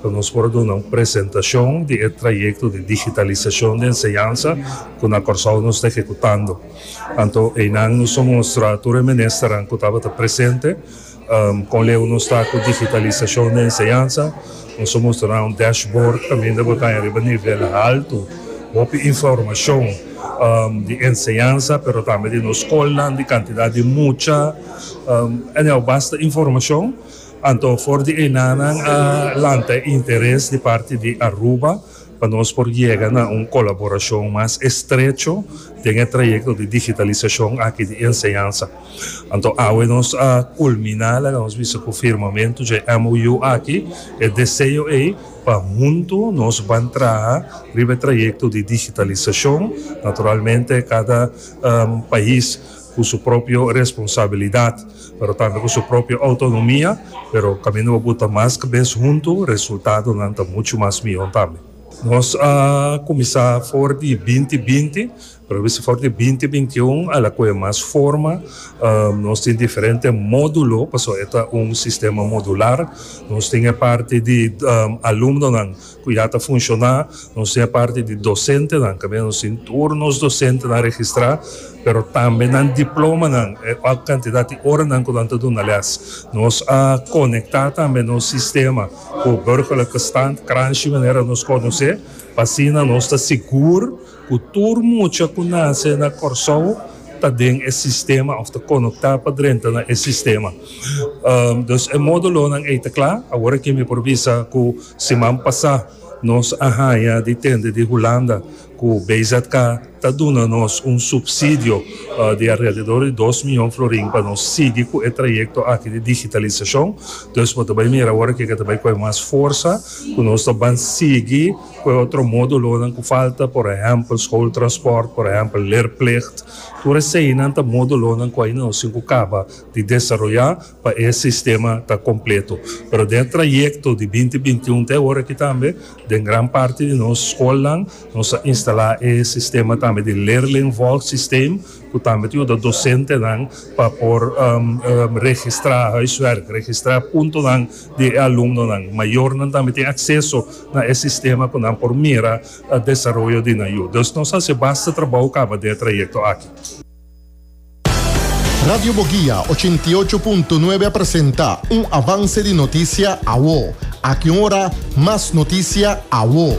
Cu nos por a duna un presentacion di e trayecto di digitalisacion di enseñansa cu na Corsou nos ta ehecutando. Anto eynan nos a mustra tur e ministeran cu tabata presente con leu nos ta cu digitalisacion di enseñansa. Nos a mustra nan un dashboard caminda cu ta riba nivel halto, hopi informacion di enseñansa pero tambe di nos scolnan, di cantidad di mucha, anyhow basta informacion. Anto for di enanan a lanta e interes di parti di Aruba pa nos por yega na un kolaborashon mas estrecho den e trayekto di digitalisashon aki di enseñansa. Anto awe nos a kulminá, laga nos bisa ku firmamentu dje MOU aki, e deseo ei pa huntu nos ban traha riba e trayekto di digitalisashon, naturalmente kada pais. cu su propio responsabilidad pero tambe cu su propio autonomia pero caminda bo buta mas cabes hunto resultadonan ta mucho mas miho tambe. Nos a cuminsa for di binti binti pero bisa for di binti binti un a la coge mas forma nos tin diferente modulo pasobra e ta un sistema modular nos tin e parti di alumnonan Cu ya ta funciona, nos tin e parti di docentenan, cabia nos tin tur nos docentenan registra, pero tambe nan diplomanan, e otro cantidad di oranan cu nan ta duna les. Nos a conecta tambe nos sistema cu Burgerlijke Stand, Kranjci manera nos conoce, pa asina nos ta sigur. Ku tur mucha ku nase na Kòrsou ta den e sistema òf ta konoktá pa drenta na e sistema. Dus e módulonan ei ta kla. Awor aki mi por bisa ku siman pasá nos a haña di tende di Hulanda ku BZK ta duna nos un supsidio di alrededor di dos miyon florin pa nos sigui ku e trayekto aki di digitalisashon. Dus bo ta bai mira awor aki ke ta bai kohe mas forsa ku nos ta ban sigui. Cu e otro modulonan cu falta? Por ehempel, schooltransport, por ehempel, leerplicht. Tur eseinan ta modulonan cu aina no sin cu caba di desaroya pa e sistema ta completo. Pero den e trayecto di binti binti un te aworaky tambe, den gran parti di nos schoolnan nos a instala e sistema tambe di leerlingvolgsysteem cu tambe ta yuda docentenan pa por registra huiswerk, registra puntonan di e alumnonan. Mayornan tambe tin akseso na e sistema ku nan por mira desaroyo di nan yu. Dus nos a hasi basta trabou kaba di e trayekto aki. Radio Boguia ochenta i ocho punto nuebe a presenta un avanse di notisia awo. Aki un ora mas notisia awo.